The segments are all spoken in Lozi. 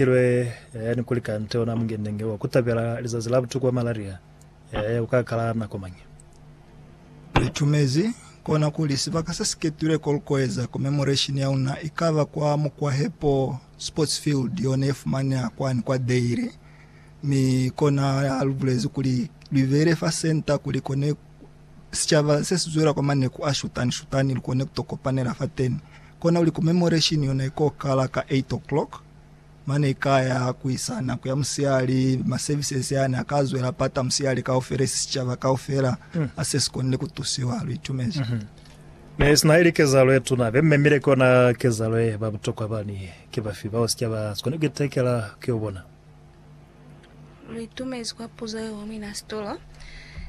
Ilwe, Eya, ni kuli kante ona mungendenge wa ku tabela lizazi la butuku bwa malaria. Eya, u ka kala nako mañi? Li tumezi kona kuli sibaka se si ketilwe ko lu koeza commemoration ya una i ka ba kwa Mukwahepo Sports Field, yone ye fumaneha kwani kwa Deiri. Mi kona ha lu bulezi kuli lu ibeile fa senta kuli kone sicaba se si zwela kwa maneku a shutani-shutani lu kone ku to kopanela fateni. Kona kuli commemoration yona i ko kala ka 8:00. mane ikaya kuisa nako ya musiyali ma services yani akazwela pata musiyali kaufela isi sicaba kaufela mm. ase sikonile kutusiwa luitumezi mm -hmm. Ne sina ili kezalo ye tuna be mmemile kona kezalo ye ba butokwa bani ke bafi bao sica ba sikone kuitekela ke yo bona luitumezi kwa puzo ye wami na sitolo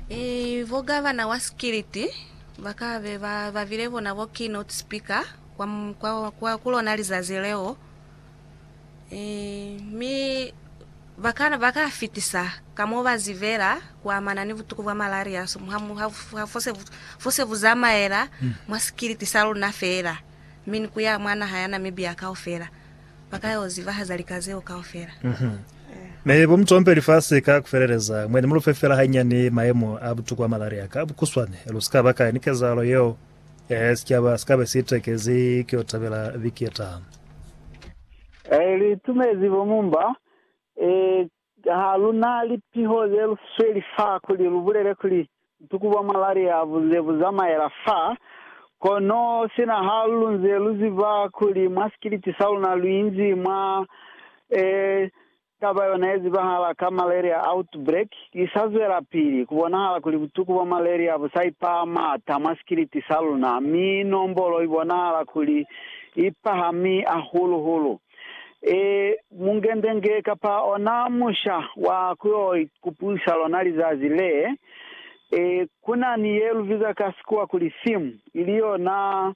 e vogavana wa sikiliti bakabe ba bavile bona bo keynote speaker kwa, kwa, kwa ku lona lizazi leo, e, mi ba ka, ba ka fitisa ka mo ba zibela ku amana ni butuku bwa malaria so, ha, ha, ha fo se bu, fo se bu zamaela mwa sikiliti sa luna fela, mi ni ku ya mwa naha ya Namibia kaufela. Ba ka yo zibahaza lika zeo kaufela. Mi bo mu compe lifasi ka ku feleleza, mwendi mu lu fe fela hañani mayemo a butuku bwa malaria ka bukuswane, lu si ka ba ka ni kezahalo yeo. Ee, sicaba si ka be si tekezi ki yo tabela viki ye taha. Ee, lu itumezi bo mumba. Ee, ha lu na lipiho ze lu sweli fa kuli lu bulele kuli butuku bwa malaria bu ze bu zamaela fa. Kono sina ha lu nze lu ziba kuli mwa sikiliti sa luna lu inzi mwa, ee, Taba yona ye zibahala ka malaria outbreak i sa zwelapili, ku bonahala kuli butuku bwa malaria bu sa ipaha m'ata mwa sikiliti sa luna, mi nombolo i bonahala kuli i pahami ahulu-hulu. E, mungendenge kapa ona musha wa ku yo ikupusa lona lizazi le, e, ku na ni ye lu biza ka Sikuwa kuli theme, ili yona,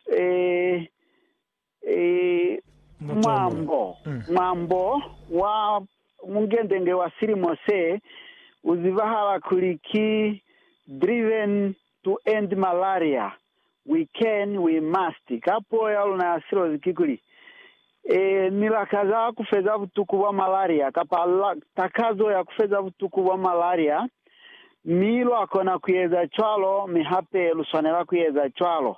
e, Mwambo, Mwambo wa Mungendenge wa silimo se, u zibahala kuli ki Driven to End Malaria, We Can, We Must. Ka puo ya luna ya silozi kikuli, Ni lakaza ku feza butuku bwa malaria, kapa takazo ya ku feza butuku bwa malaria, mi lwa kona ku eza cwalo, mi hape lu swanela ku eza cwalo.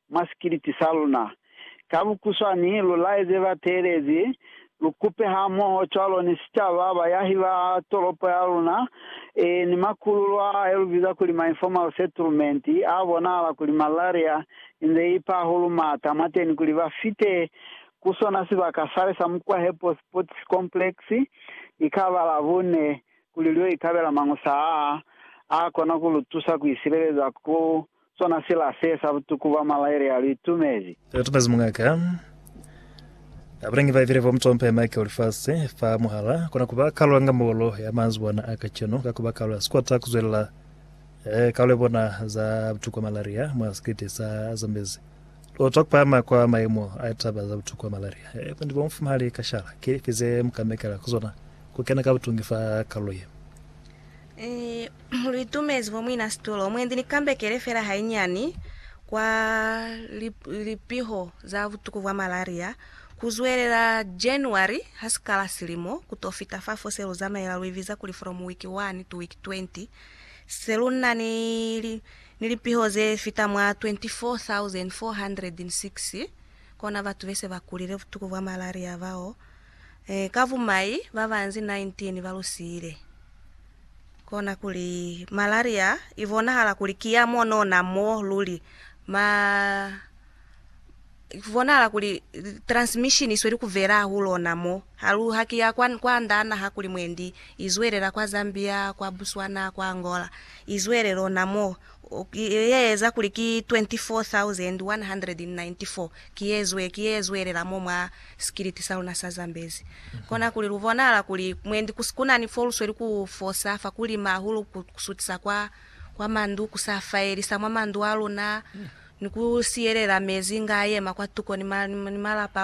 mwa sikiliti sa luna. Ka bukuswani, lu laeze bateelezi, lu kupe hamoho cwalo ni sicaba, bayahi ba tolopo ya luna, ee, ni makululo a ayo lu biza kuli ma-informal settlement, a bonahala kuli malaria inze ipa hahulu mata mwateni, kuli ba fite ku sona sibaka sale sa Mukwahepo Sports Complex, ikaba Labune, kuli lu yo ikabela mañusa aa, a kona ku lu tusa ku isileleza ku Sona sila se sa butuku ba malaile ya lu itumezi. Lu itumezi mungaka. Abalangi ba ibile bo mutompe Michael lifasi fa muhala kona kuba kalu ya ngambolo ya manzibwana a kacenu ka kuba kalu ya sikota kuzwelela eh, kalu ya bona za butuku malaria mwa sikete sa Zambezi. Lotwa kupahama kwa mayemo a litaba za butuku malaria eh, bundi bo mufumahali kashala ke lifi ze mukamekela kuzona kukena ka butungi fa kalulo ye. Ni lu itumezi bo muina situlo mwendi ni kambekele fela hainyani kwa lipiho za butuku bwa malaria ku zwelela January ha si kala silimo ku to fita fa fo se lu zamaela lu ibiza kuli from week 1 to week 20 se lu na ni lipiho ze fita mwa 24,406 kona batu be se ba kulile butuku bwa malaria bao. Ka bumai, ba banzi 19 ba lu siile. Kona kuli malaria i bonahala kuli ki ya monona mo luli. Ma, ku bonahala kuli transmission i sweli ku vela hahulona mo. Ha lu, ha ki ya kwa, kwa nda naha kuli mwendi, i zwelela kwa Zambia, kwa Botswana, kwa Angola. I zwelele ona mo. yeeza kuli ki 24,194, ki yezwe, ki yezwelela mo mwa sikiliti sa luna sa Zambezi. Kona kuli lu bonahala kuli mwendi ku, kuna ni fo lu sweli ku fosa fa ku lima hahulu, ku, ku sutisa kwa, kwa mandu, ku sa faelisa mwa mandu a luna, ni ku siyelela mezi nga a yema kwa tuko ni ma, ni malapa a luna.